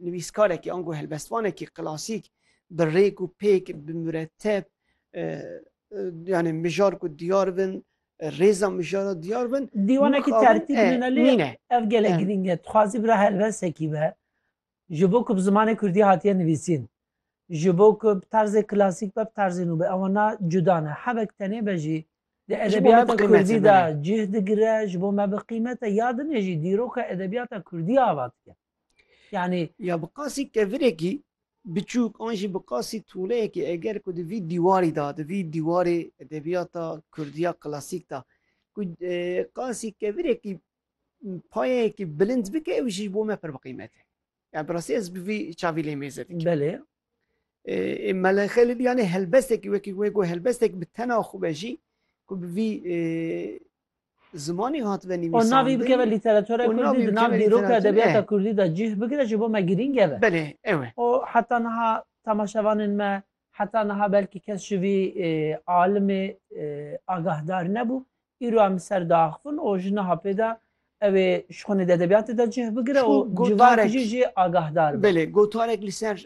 nivîskarekî ango helbestvanekî klasîk bi rêk û pêk bi mureteb yani mijar ku diyar bin rêza mijara diyar bin dîwanekî tertîb nîne ev gelek girîng e dixwazî bira helbesekî be ji bo ku bi zimanê kurdî hatiye nivîsîn Ji bo ku bi tarzê klasîk be, bi tarzê nû be ewa na cuda ne. Hevek tenê be jî di edebiyata kurdî de cih digire, ji bo me bi qîmet e. Ya dinê jî dîroka edebiyata kurdî ava dike. Yanî. Ya bi qasî kevirekî biçûk an jî bi qasî tûleyekî eger ku di vî dîwarî de, di vî dîwarê edebiyata kurdî ya klasîk de ku qasî kevirekî payeyekî bilind bike ew jî ji bo me pir bi qîmet e. Yani bi rastî ez bi vî çavî lê mêze dikim. Belê. Ê melexe li dîyanê helbestekî wekî wê ku helbestek bi tena xwe be jî ku bi vî zimanî hatibe nivîsandin. Navî bikeve lîteratura Kurdî di nav dîroka edebiyata Kurdî de cih bigire ji bo me girîng e be. Belê ew e. O heta niha temaşevanên me Heta niha belkî kes ji vî alimê agahdar nebû. Îro em li ser diaxivin û ji niha pê de ew ê ji xwe di edebiyatê de cih bigire û civakî jî jê agahdar be. Belê, gotarek li ser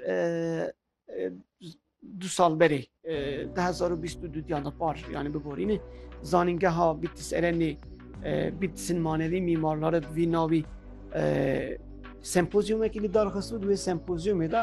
du sal berê di hezar û bîst û du diya de par yanî biborîne. Zanîngeha Bîtis Erenê Bîtisên Manevî Mîmarlari bi vî navî sempozyumekî li darxist û di wê sempozyumê de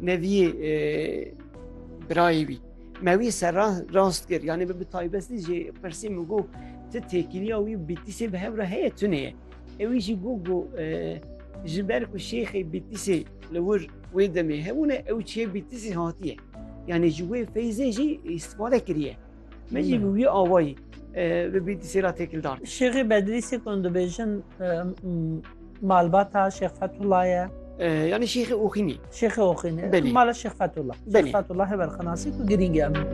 Mevî birayê wî. Mewî ser rast kir yanî bi bi taybestî jî pirsî min got ti têkiliya wî bîtîsê bi hev re heye tune ye. Ewî jî got got ji ber ku şêxê bîtîsê li wir wê demê hebûne ew çê bîtîsê hatiye. Yani ji wê feyzê jî îstîfade kiriye. Me jî bi wî awayî bi bî dîsê ra têkil dar. Şêxê Bedrîsê ku hûn dibêjin malbata Şêx Fethullah ye. Yani Şêxê Oxînî. Şêxê Oxînî. Belî. Mala Şêx Fethullah. Belî. Şêx Fethullah heber xenasî ku girîng e min.